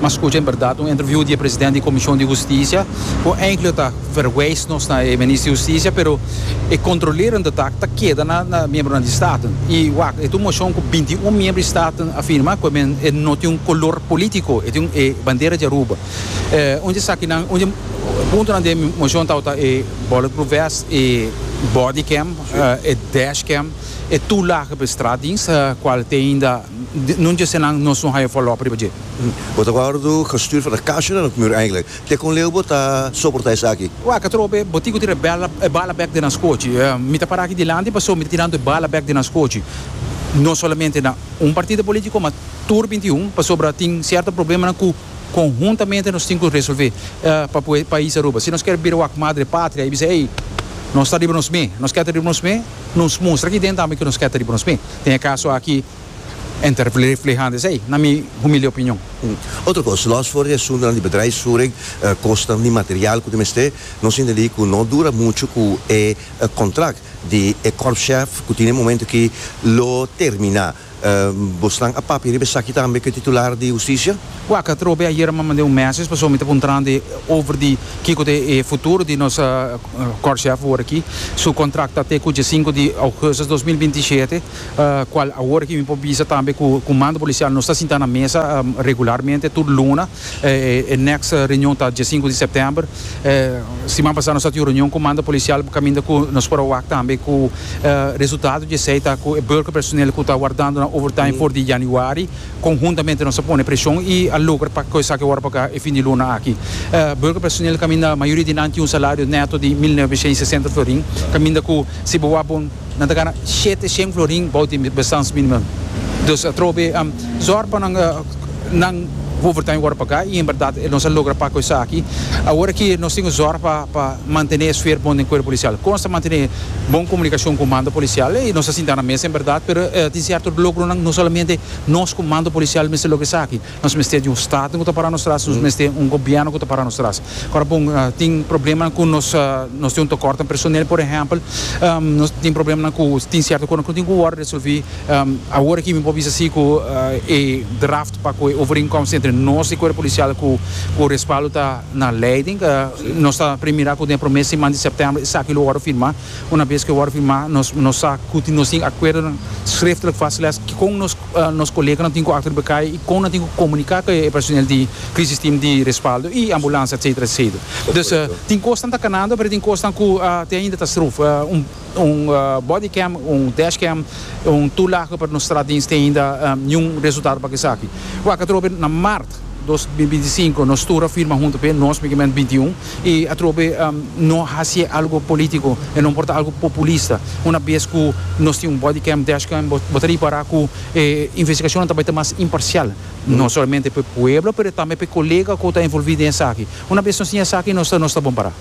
Mas scucha en berdad un interview di e president di Comision di Husticia cu eindelijk ta verwijs nos na e minister di Husticia pero e controleren de taak ta keda na na miembronan di Staten. Y wak, e ta un motion cu binti y un miembro di Staten a firma cu e men e no tin un color politico, e tin e bandera di Aruba. Eh, un di e sakinan, un di e puntonan den e motion tabata e bulletproof vest, e bodycam, eh, e dashcam, e toelagen pa e straatdienst, cual te ainda. Nun djese nan nos no haya follow up riba dje. Bo ta wou do gestuurd for a kasha na nos muur eigenlijk. Te kon leu bo ta soporta esaki? Waka trobe, bo tin ku tira e bala e bala bek den nos kochi. Mi ta para aki dilanti paso mi ta tirando e bala bek den nos kochi. No solamente na un partido politico ma tur binti i un pasobra tin cierto problemanan ku konhuntamente nos tin ku resolve pa pue pais Aruba. Si nos kier bira wak madre patria i bisa ey nos ta riba nos me, nos keda riba nos me. Nos mustra aki den tambe ku nos ke ta riba nos pie. Den e kaso aki N ta reflehando esei, na mi humilde opinion. Otro kos, lòs for di e asuntunan di bedrijfsvoering, kosnan di material ku ta mester, nos intendí ku no dura muchu ku e kontrakt di e kòrpschef ku tin e momentu aki lo terminá. Bosnan a papia riba esaki tambe ku e titular di hustisia? Kua katró be ayera mama den un mèses, pasobra mi ta puntrando e over di kiko ta e futuro di nos kòrshèf awor aki. Su kontrakt ta te ku diesinko di ougustus dos mil binti shete, kual awor aki mi por bisa tambe ku Kumando Polisial nos ta sinta na mesa regularmente tur luna. E next reunion ta dia sinku di september. Siman pasa nos a tin un reunion ku mando polisial kaminda ku nos por a wak tambe ku resultado di esei ta ku e burka personel ku ta wardando nan overtime for di yanüari konhuntamente nos a pone preshon i a logra pa kos esaki wòrdu paga e fin di luna aki. Burka personel kaminda mayoria di nan tin un salario neto di mil noveshen i sesenta florin kaminda ku si bo wak bo Nan ta gana shete shen florin bou di bestans minimum. Dus atrobe zor pa nan nan overtime worde paga y en berdad nos a logra paga cu esaki. Awor aki nos tin cu zor pa pa mantene e sfeer bon den cuerpo policial. Con nos ta mantene bon comunicacion cu mando policial y nos a sinta na mesa en berdad pero tin cierto logronan no solamente nos cu mando policial mester logra esaki. Nos mester di un staten ku ta para nos tras, nos mester un gobièrnu ku ta para nos tras. Kòrda bon, tin problemanan ku nos nos tin un tokòrt den personel, por ehèmpel. Nos tin problemanan ku tin sierto kosnan ku no tin ku wòrdu resolví. Awor aki mi por bisa si ku e draft pa ku e overeenkomst entre nos i Cuerpo Policial ku ku respaldo ta na leiding. Nos ta prim mira ku den e promé siman di sèptèmber esaki lo wòrdu firmá. Unabes ku e wòrdu firmá nos nos sa ku nos tin acuerdonan srèftelijk vastgelegd kikon nos nos koleganan tin ku akto riba kai i kon nan tin ku komuniká ku e personel di Crisis Team di Respaldo i Ambulansia etsetera etsetera. Dus tin kosnan ta kanando pero tin kosnan ku te ainda ta struf. Un un body cam un dash cam un tulagen pa nos traha dins te ainda niun resultado pa ke esaki. Wak atrobe na mart. dos mi binti sinku nos tur a firma huntu p'e nos mi kimen binti un i atrobe no hasié algu polítiko i no por ta algu populista una bes ku nos tin un body cam dash cam bo ta ripará ku e investigashonnan ta bai ta mas imparsial no solamente p'e pueblo pero tambe p'e kolega ku ta envolví den esaki una bes nos tin esaki nos ta nos ta bon pará.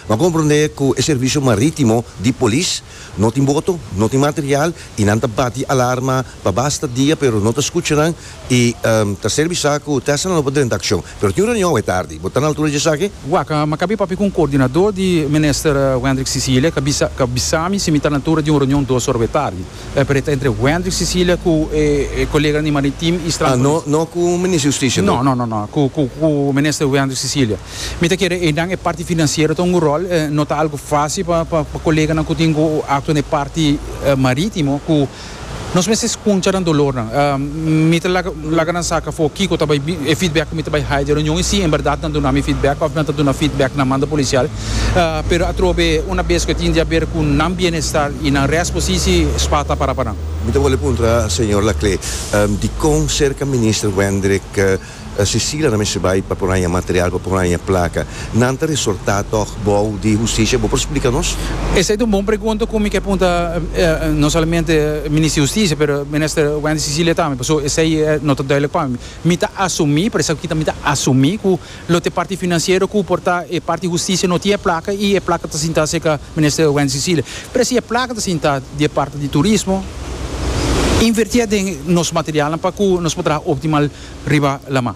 Nan komprondé ku e servisio marítimo di polis no tin boto, no tin material i nan ta bati alarma pa basta dia pero no ta skucha nan i ta ser bisá ku Tesla lo por drenta akshon. Pero tin un reunion awe tardi. Bo ta na altura di esaki? Wak, Mi ka bin papia ku un koordinadó di Minister Wendrick Cecilia, ka bisa, ka bisami si mi ta na altura di un reunion dos ora awe tardi. E preta entre Wendrick Sicilia cu e colega di Maritim y Strand Police. Ah, no, no cu Minister Justicia bo? No, no, no, no, cu, cu, cu Minister Wendrick Sicilia. Mi ta kere einan e parti financiero ta un go rol, eh, no ta algo facil pa, pa, pa coleganan cu tin go actua na e parti, eh, maritimo cu nos mester scunsha nan dolornan. Ah, mi ta laga, laga nan sa cafó kico ta bay, e feedback cu mi ta bay hay di e reunion y si en berdad nan duna mi feedback of nan ta duna feedback na mando policial. pero atrobe una bes cu e tin di haber cu nan bienestar y nan res posisi spa ta para pa nan. Mi ta wòrdu puntra señor Laclé dicon cerca Minister Wendrick Cecilia ta mester bai pa por haña material, pa por haña placa. Nan ta resortá tòg bou di Husticia? Bo por splica nos? Esei ta un bon pregunta cu mi ke punta no solamente Minister di Husticia pero Minister Wendrick Cecilia tambe pasobra esei no ta duidelijk pa mi. Mi ta asumí, por esaki ta mi ta asumí cu Lo t'e parti financiero cu por ta e parti husticia no tin e placa y e placa ta sinta cerca minister Wendy Cecilia. Pero si e placa ta sinta di e parti di turismo, inverti a den nos materialnan pa cu nos por traha optimal riba laman.